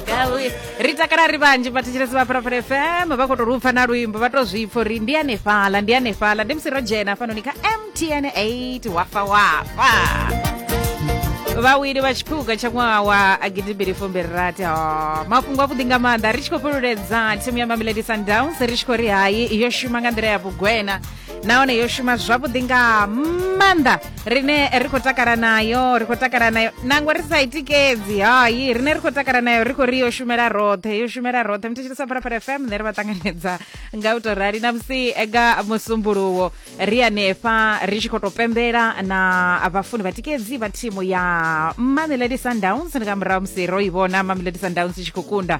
Gawi. ri takala ri vhanzhi vhathetshelesi vha phalaphala fm vha khou tou lupfa na luimbo vha tou zwipfa uri ndi hanefhala ndi hanefhala ndi musi ro dzhena hafhanoni kha mtn 8 wafa wafa vhawili vha tshiphuga tsha ṅwaha wa gidimbili fumbili rathi ho mafhungo avhuḓi nga maanḓa ri tshi khou fhululedza thimu ya mamelodi sundowns ri tshi khou ri hayi yo shuma nga nḓila ya vhugwena nahone yo shuma zwavhuḓi nga maanḓa rine ri khou takala nayo ri khou takala nayo nangwe ri sa i tikedzi hai rine ri khou takala nayo ri khou ri yo shumela roṱhe yo shumela roṱhe muthetshirisa phalaphala fm nṋe ri vha ṱanganedza nga u tou rali na musi nga musumbuluwo ri anefha ri tshi khou tou pembela na vhafuni vha tikedzi vha thimu ya mamelodi sundowns ndi nga murahu musi ro i vhona mamelodi sundowns i tshi khou kunda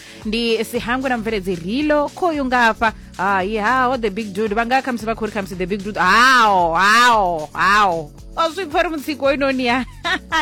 ndi sihangwe na mubveledzi rilo khoyu ngafha hai hao the big dude vha nga khamusi vha khou ri khamusi the big dude hao hao hao o zwi pfa ri mutsiko hoyunoni ya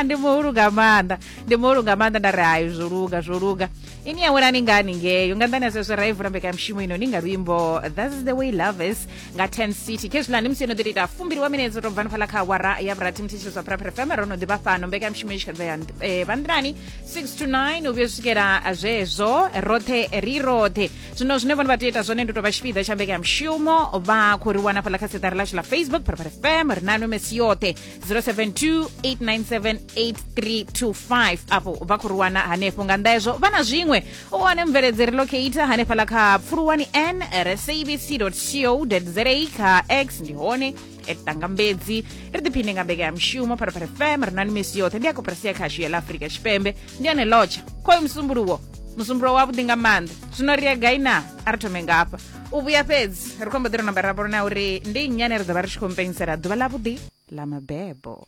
ndi muhulu nga maanḓa ndi muhulu nga maanḓa nda ri hayi zwo luga zwo luga ini ya welani ngani ngeyo nga nḓani ya zwezwo ra i vula mbekamishumo ino ni nga luimbo that's the way love is nga 10 city khezwilani musi yo no ḓi ita fumbili wa minetse to bvani fhala kha awara ya vhurathi muthetsheli zwa phuraphura fm ro no ḓivha fhano mbekanyamushumo i tshi khadza ya eh, vhanḓilani 6 to 9 u vhuya swikela zwezwo roṱhe ri roṱhe zwino zwine vhone vha tea ita zwone ndi u tou vha tshipiḓa tsha mbekanyamushumo vha khou ri wana fhala kha siṱari lashu la facebook phuraphura fm ri nano mesi yoṱhe 072 897 8325 afho vha khou ri wana hanefho nga nnḓa hezwo vha na zwiṅwe u wane mveledzeri locator hanefhala kha pfuluwani n re sabc co za kha x ndi hone etangambedzi ri ḓiphine nga mbekanyamushumo pharapara fm ri na ni misi yoṱhe ndi akoperasi ya khashu ya ḽa afurika tshipembe ndi yone lotsha khoyo musumbuluwo musumbulo wavhuḓi nga maanḓa zwino ri ya gai na a ri thome ngafha u vhuya fhedzi ri khombo ḓi ro namba ra vhona uri ndi nnyane ri ḓo vha ri tshi khou mpenyisela ḓuvha ḽavhuḓi ḽa mabebo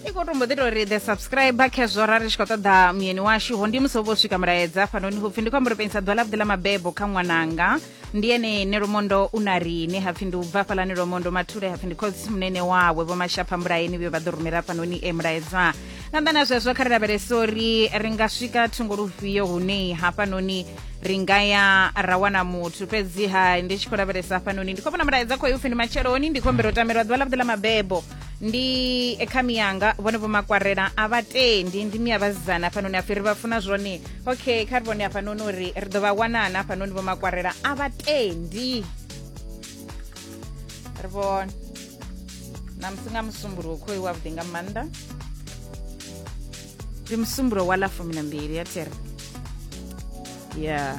i khou tumbo ḓi tou ri the subscriber khezwo ra ri tshi khou ṱoḓa muyeni washu ho ndi musi ho vho swika mulaedza hafhanoni hupfi ndi khou amba uri pengisa ḓuvha ḽavhuḓi ḽa mabebo kha ṅwananga ndi ene ne lomondo u na riṋe hapfi ndi u bva hafhalani lomondo mathule hapfi ndi khotsi munene wawe vho mashapha mbulayeni vhuyo vha ḓo rumela hafhanoni e mulaedza nga nnḓa na zwezwo kha ri lavhelese uri ri nga swika thungo lufhio hune hafhanoni ri nga ya ra wana muthu fhedziha ndi tshi khou lavhelesa hafhanoni ndi khou vhona mulaedza khoyo upfi ndi matsheloni ndi khou humbela u tamelwa ḓuvha ḽavhuḓi ḽa mabebo ndi ekhami yanga vhone vho makwarela a vha tendi ndi mia vhasidzana hafhanoni hapfi ri vha funa zwone okay kha ri vhone hafhanoni uri ri ḓo vha wanana hafhanoni vho makwarela a vha tendi ri vhone na musi nga musumbuluwo khoi wavhuḓi nga maanḓa ndi musumbulo wa ḽa fumi na mbili ya thiri ya yeah.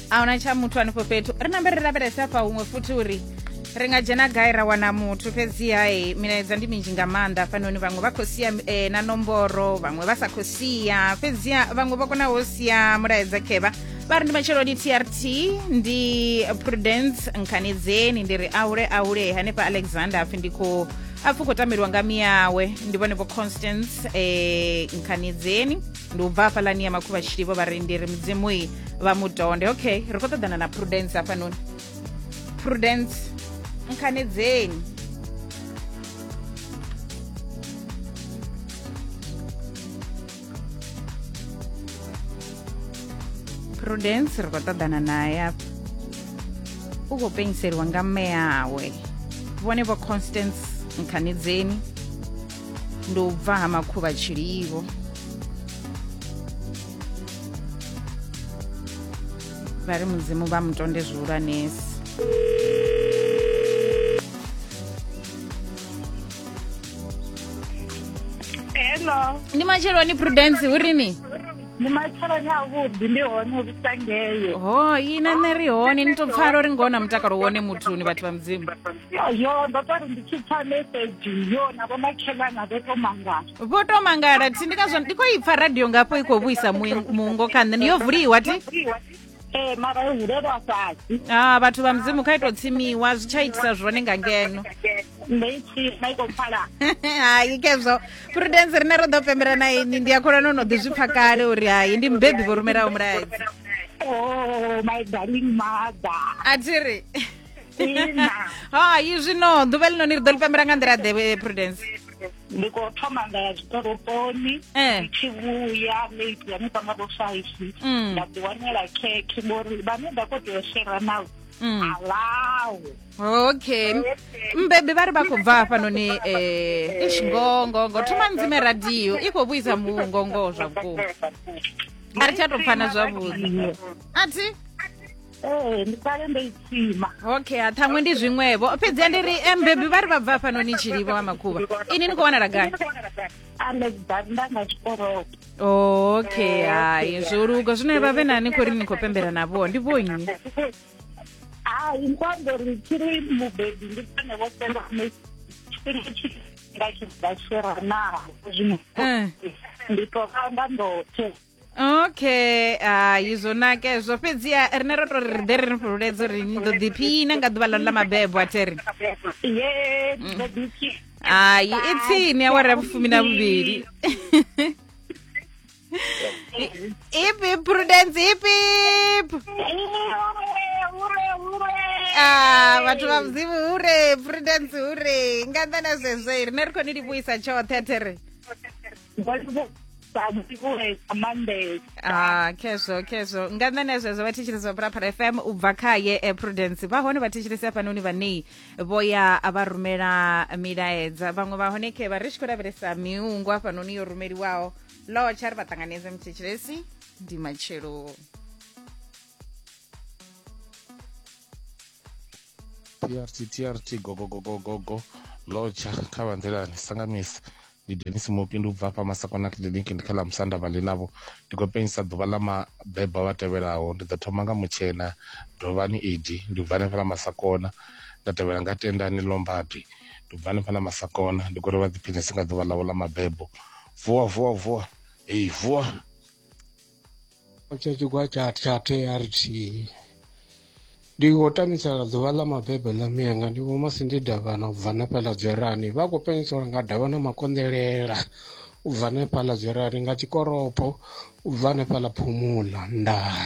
ahuna tsha muthu hanefho fhethu ri nambe ri lavhelesa hafha huṅwe futhi uri ri nga dzhena gai ra wana muthu fhedziha e milaedza ndi minzhi nga maanḓa fanoni vhaṅwe vha khou sia e, na nomboro vhaṅwe vha sa khou sia fhedziha vhaṅwe vha kona ho sia mulaedza khevha vha ri ndi matshelo ndi trt ndi prudence nkhanedzeni ndi ri aule aule hanefha alexander apfi ndi khou apfi khou tambeliwa nga miyawe ndi vhone vho constance e, nkhanedzeni ndi u bva hafhaḽani ya makhuvha tshilivho vharendiri mudzimui vha mudonde okay ri khou ṱoḓana na prudence hafhanoni prudence nkhanedzeni prudence ri khou ṱoḓana naye afha u khou pengiseliwa nga mme yawe vhone vho constance nkhanedzeni ndi u bva ha makhuvha tshilivho vha ri mudzimu vha mutonde zwihulwanesi hello ndi matsheloni prudence hu rini ndi matsheloni avhuḓi ndi hone hu sangeyo ho ina nṋe ri hone ni to pfala uri ngoho na mutakalo wone muthuni vhathu vha mudzimu yo yo ndo tori ndi tshi pfa message yo na vhomakhelana vho to mangala vho to mangala thi ndi ngazwo ndi khou i pfa radio ngafho i khou vhuisa muing- muungo kha nṋe yo vuliwa thi ee mara yo hulelwa fhasi ah vhathu vha mudzimu kha ito tsimiwa zwi tsha itisa zwone nga ngeno ndo i tsima i khou pfala hayi kezwo prudence rine ro ḓo pembela na ini ndi a kholwa no no ḓi zwi pfa kale uri hayi ndi mubebi vho rumelaho mulaedza o Oh, my darling mother a thi ri hai zwino ḓuvha ḽinoni ri ḓo ḽi pembela nga nḓila ḓe eh, prudence ndi khou thoma nga ya zwikorokoni eh. ndi tshi vhuya late ya ni panga vho five mm. nda ḓi wanela khekhe ngori vhane nda khou tea u shera navho mm. alawo okay mbebi vha ri vha khou bva hafhanoni um eh, ish ngongongo thoma ndzime radio i khou vhuisa mungongo zwa vhukuma a ri tsha tou pfana zwavhuḓi a thi ee ndi kale ndo i tsima okay ha ṱhaṅwe ndi zwiṅwevho fhedzi ndi ri eh, mbebi vha ri vha bva fhano ni tshilivho wa makhuvha ini ni khou wanala gai okay hai zwo luga zwino vha vhe na ni khou ri ni khou pembela navho ndi vho nnyi hai nkwambo ri tshi ri mubebi ndi vhone vho senda tshifhinga tshifhinga tshi bva tshiranaho zwino eh. ndi tovha nda ndoṱhe okay hai zwo nakezwo fhedziha rine ro to ri ḓe ri ni fhululedza uri ni ḓo ḓiphina nga ḓuvha ḽanu ḽa mabebo a theri hai i tsini awara ya vhufumi na vhuvhili ipi prudence ipip ah, vhathu vha mudzimu hure prudence hure nga nnḓa na zwezwo i rine ri khou ni livhuisa tshoṱhe a theri ah khezvo khezvo nga nṋe na zwezwo vhathetshelesi vha purapara fm u bva khaye eh, prudence vha hone vhathetshelesi hafhanoni vhanei vho ya vha rumela milaedza vhaṅwe vha hone khe vha ri tshi khou lavhelesa miungu hafhanoni yo rumeliwaho lotsha ri vha ṱanganedze muthetshelesi ndi matshelo trt trt gogogogogogo lotsha kha vha nḓilani sangamisi ndi denis mopi ndi u bva afha masakona clinic ndi kha ḽa musanda vhali navho ndi khou penyisa ḓuvha ḽa mabebo vha tevhelaho ndi ḓo thoma nga mutshena dovhani edi ndi bva hanefha ḽa masakona nda tevhela nga tendani lombadi ndi bva hanefha ḽa masakona ndi khou ri vha ḓiphinese nga ḓuvha ḽavho ḽa mabebo vuwa vuwa vuwa eyi vuwa tsha tshigwa tsha tsha trt ndi khou tamisela ḓuvha ḽa mabebo ḽa mianga ndi vho masindi davhana u bva nefhaḽa dzwerani vha khou penyiselwa nga davha na makonḓelela u bva nefhaḽa dzwerani nga tshikoropo u bva nefhaḽa phumula ndaa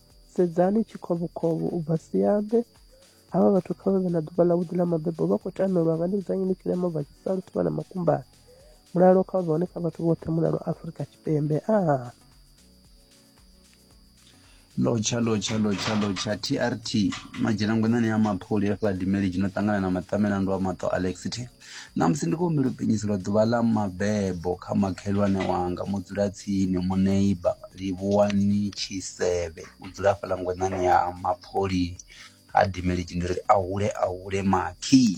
sedzani tshikovhokovho u bva siambe havha vhathu kha vha vhe na ḓuvha ḽa vhuḓi ḽa mabebo vha khou tamelwa nga ndivhudzanyi ni tshilema bva tshisalu thuvha na makumbani mulalo kha vha hone kha vhathu vhoṱhe mulalo afurika tshipembe a lotsha lotsha lotsha lotsha trt madzhenangwenani ya maphuli afha dimeli tshino ṱangana na maṱamela ndo a maṱo alexite Ṋamusi ndi khou humbela u pinyiselwa ḓuvha ḽa mabebo kha makhelwane wanga mudzulatsini muneiba Livhuwani Tshisevhe u dzula hafhaḽa ngwenḓani ya Mapholi ha Dimelegi ndi ri a hule a hule makhi.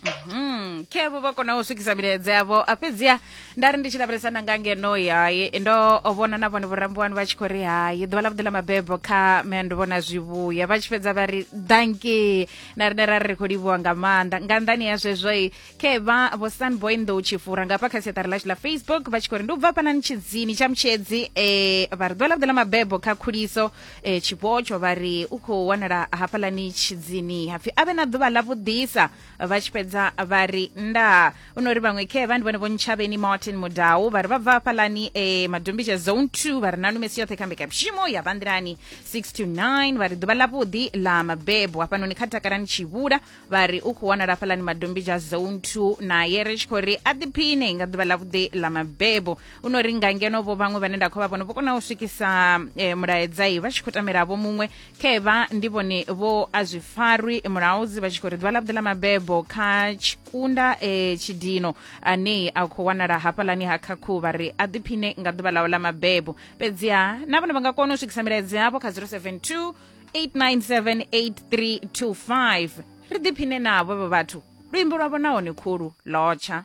Mhm. Khevho vha kona u swikisa milaedza yavho a fhedziha nda ri ndi tshi lavhelesa nda nga ngeno hayi ndo vhona na vhone vhorambiwani vha tshi khou ri hayi ḓuvha ḽa vhuḓi ḽa mabebo kha mendo vhona zwivhuya vha tshi fhedza vha ri danki na rine ra ri khou livhuwa nga maanḓa nga nḓani ya zwezwo i ke vha vho sunboy nḓou tshi fura nga hafha kha siaṱari lashu la facebook vha tshi khou ri ndi u bva fhanani tshidzini tsha mutshedzi um vha ri ḓuvha ḽavhuḓe ḽa mabebo kha khuliso um eh, tshipotsho vha ri u khou wanala hafhaḽani tshidzini hapfi a vhe na ḓuvha ḽavhuḓisa vha tshi fhedza vha ri ndaa u no ri vhaṅwe khe vha ndi vhone vho ntshavheni martin mudau vha ri vha bva hafhaḽani e eh, madumbisha zone 2 vha ri na lumesi yoṱhe kha mbekamishumo ya bva nḓilani 6 to 9 vha ri ḓuvha ḽavhuḓi ḽa mabebo hafhanoni kha takalani tshivhula vha ri u khou wanala hafhaḽani madumbisha zone 2 naye ri tshi khou ri a ḓiphine nga ḓuvha ḽavhuḓi ḽa mabebo u no ri nga ngeno vho vhaṅwe vhane nda khou vha vhona vho kona u swikisa eh, mulaedzai vha tshi khou tamela vho muṅwe khevha ndi vhone vho a zwi farwi mulaudzi vha tshi khou ri ḓuvha ḽavhuḓi ḽa mabebo kha tshikunda e tshidino ane a khou wanala hafhaḽani ha khakhu vha ri a ḓiphine nga ḓuvha ḽawe ḽa mabebo fhedziha na vhone vha nga kona u swikisa milaedzi yavho kha 072 897 8325 ri ḓiphine navho vho vhathu luimbo lwavho nahone khulu lotsha